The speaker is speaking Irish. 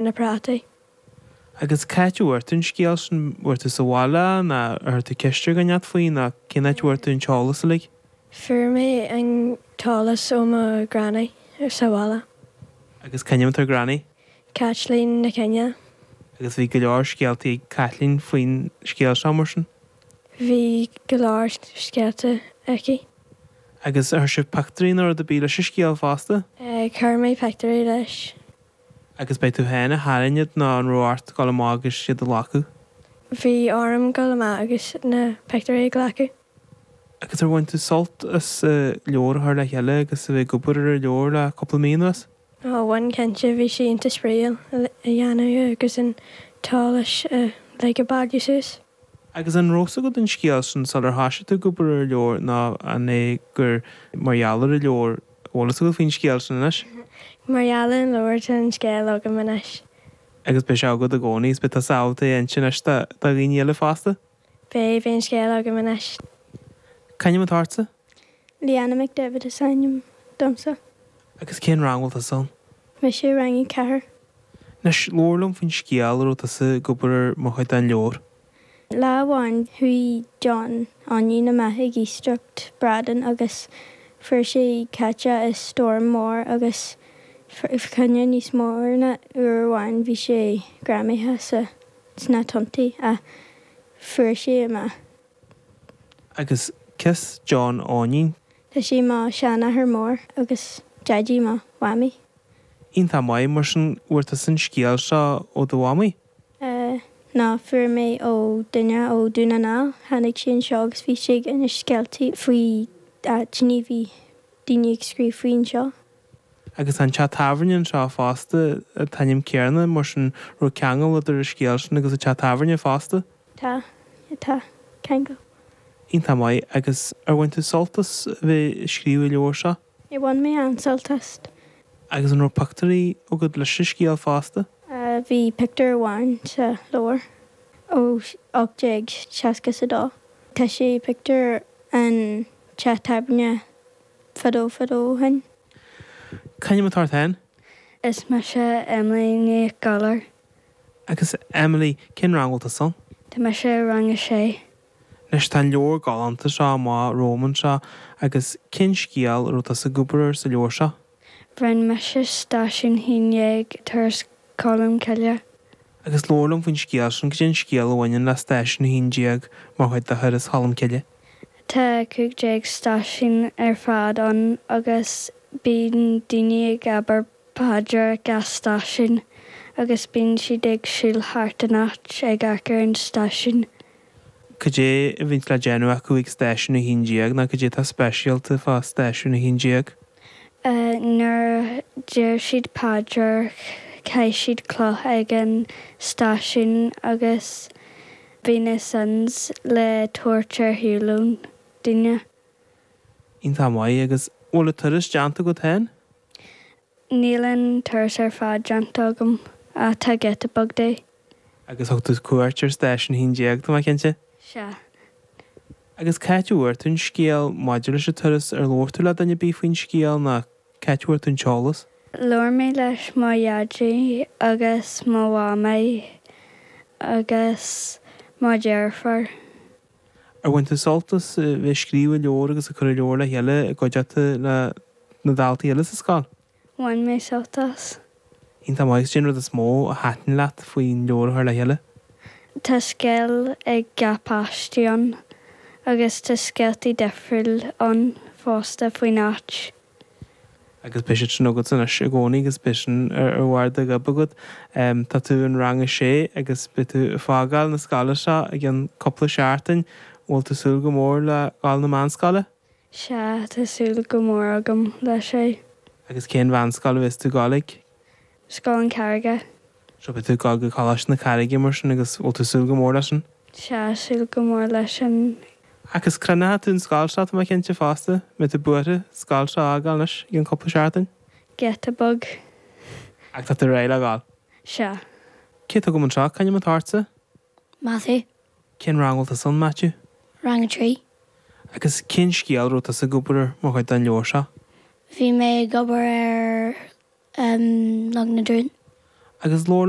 na prátaí. Agus c'áit a bhfuair tú an scéal sin? Bhfuair tú sa bhaile é ná ar chuir tú ceist ar dhuine inteacht faoi nó cén áit a bhfuair tú an t-eolas uilig? Fuair mé an t-eolas ó mo Ghranny sa bhaile. Agus c'ainm atá ar Granny? Caitlín Nic Fhinne. Agus bhí go leor scéaltaí ag Caitlín faoin scéal seo mar sin? Bhí go leor scéalta aici. Agus ar chuir sibh pictiúirí nó rud ar bith leis an scéal fosta? Chuir mé pictiúirí leis. Agus b'é tú féin a tharraing iad nó an raibh ort dul amach agus iad a ghlacadh? Bhí orm dul amach agus na pictiúirí a ghlacadh. Agus ar bhain tú sult as leabhar a chur le chéile agus a bheith ag obair ar an leabhar le cúpla mí anuas? Ó, bhain cinnte, bhí sé iontach spraíúil a dhéanamh agus an t-eolas uilig a bhailiú suas. Agus an raibh fhios agat faoin scéal sin sular thoisigh tú ag obair ar an leabhar ná an é gur mar gheall ar an leabhar a bhfuil fhios agat faoin scéal sin anois? Mar gheall ar an leabhar tá an scéal agam anois. Agus beidh sé agat i gcónaí is beidh tusa ábalta é a insint anois do dhaoine eile fosta? Beidh, beidh an scéal agam anois. C'ainm atá ortsa? Leanna McDevitt is ainm domsa. Agus cén rang bhfuil tusa ann? Mise i rang a ceathair. Anois, labhair liom faoin scéal a raibh tusa ag obair air mar chuid den leabhar. Lá amháin chuaigh John Eoinín amach ag iascaireacht bradán agus fuair sé caite i stoirm mór agus fá choinne níos mó ná uair amháin bhí sé greamaithe sa sna tonntaí ach fuair sé amach. Agus cé hé John Eoinín? Tá sé mo sheanathair mór agus daidí mo mhamaí. Iontach maith. Mar sin, bhfuair tusa an scéal seo ó do mhamaí? Eh, no, fuair mé ó duine ó Dún na nGall. Tháinig sé anseo agus bhí sé ag inse scéaltaí faoi daoine a bhí daoine ag scríobh faoi anseo. Agus tá an teach tábhairne anseo fosta, an t-ainm céarna, mar sin raibh ceangal idir an scéal sin agus an teach tábhairne fosta. Tá. Tá. Ceangal. Iontach maith. Agus ar bhain tú sult as bheith ag scríobh an leabhair seo? Ó bhain mé an-sult as. Agus an raibh pictiúirí agat leis an scéal fosta? Ahh, bhí pictiúr amháin sa leabhar ó 1860 is a dó. Tá sé pictiúr an teach tábhairne fadó fadó ó shin. Ahh. C'ainm atá ort féin? Is mise Emily Nic Gabhair. Agus Emily, cén rang bhfuil tusa ann? Tá mise i rang a sé. Anois tá an leabhar galánta seo amach romham anseo agus cén scéal a raibh tusa ag obair air sa leabhar seo? Rinn mise stáisiún haon déag Turas Cholm Cille. Agus labhair liom faoin scéal sin, cad é an scéal a bhaineann le stáisiún haon déag mar chuid de Thuras Cholm Cille? Tá cúig déag stáisiún ar fad ann agus bíonn daoine ag obair paidir ag an stáisiún agus bíonn siad ag siúl thart an áit ag amharc ar an stáisiún. Cad é a bhíonns le déanamh acu ag stáisiún a haon déag ná cad é atá speisialta fá stáisiún a haon déag? Eh nuair a deir siad paidir caith siad cloch ag an stáisiún agus bíonn seans le tabhairt ar shiúl ann, duine. Iontach maith. Agus an bhfuil turas déanta agat féin? Níl an turas ar fad déanta agam ach tá giota beag de. Agus thug tú cuairt ar Stáisiún a hAon Déag, tá mé cinnte? Sea. Agus c'áit a bhfuair tú an scéal maidir leis an turas? Ar labhair tú le duine ar bith faoin scéal nó c'áit a bhfuair tú an t-eolas? Labhair mé leis mo dhaidí agus mo mhamaí agus mo dheirfiúr. Ar bhain tú sult as bheith ag scríobh an leabhair agus ag cur an leabhair le chéile i gcuideachta na daltaí eile sa scoil? Bhain mé sult as. Iontach maith. Agus cén rud is mó a thaitin leat faoin leabhar a chur le chéile? Tá scéal ag gach páiste ann agus tá scéaltaí difriúil ann fosta faoin áit. Agus beidh sé sin agat anois i gcónaí agus beidh sin ar bharr do ghoib agat. Tá tú in rang a sé agus beidh tú ag fágáil na scoile seo i gceann cúpla seachtain. An bhfuil tú ag súil go mór le dul na meánscoile? Sea, tá súil go mór agam leis é. Agus cén mheánscoil a bheas tú ag dul ag? Scoil an Carraige. Sea, beidh tú ag dul go Coláiste na Carraige mar sin agus bhfuil tú ag súil go mór leis sin? Sea, súil go mór leis sin. Agus crothnóidh tú an scoil seo, tá mé cinnte fosta, mbeidh tú buartha an scoil seo a fhágáil anois i gceann cúpla seachtain. giota beag. Ach tá tú réidh le dhul? Sea. Cé atá agam anseo? C'ainm atá ortsa? Maitiú. Cén rang bhfuil tusa ann, Maitiú? Rang a trí. Agus cén scéal a raibh tusa ag obair ar mar chuid den leabhar seo? Bhí mé ag obair ar Log na dTruán. Agus labhair liom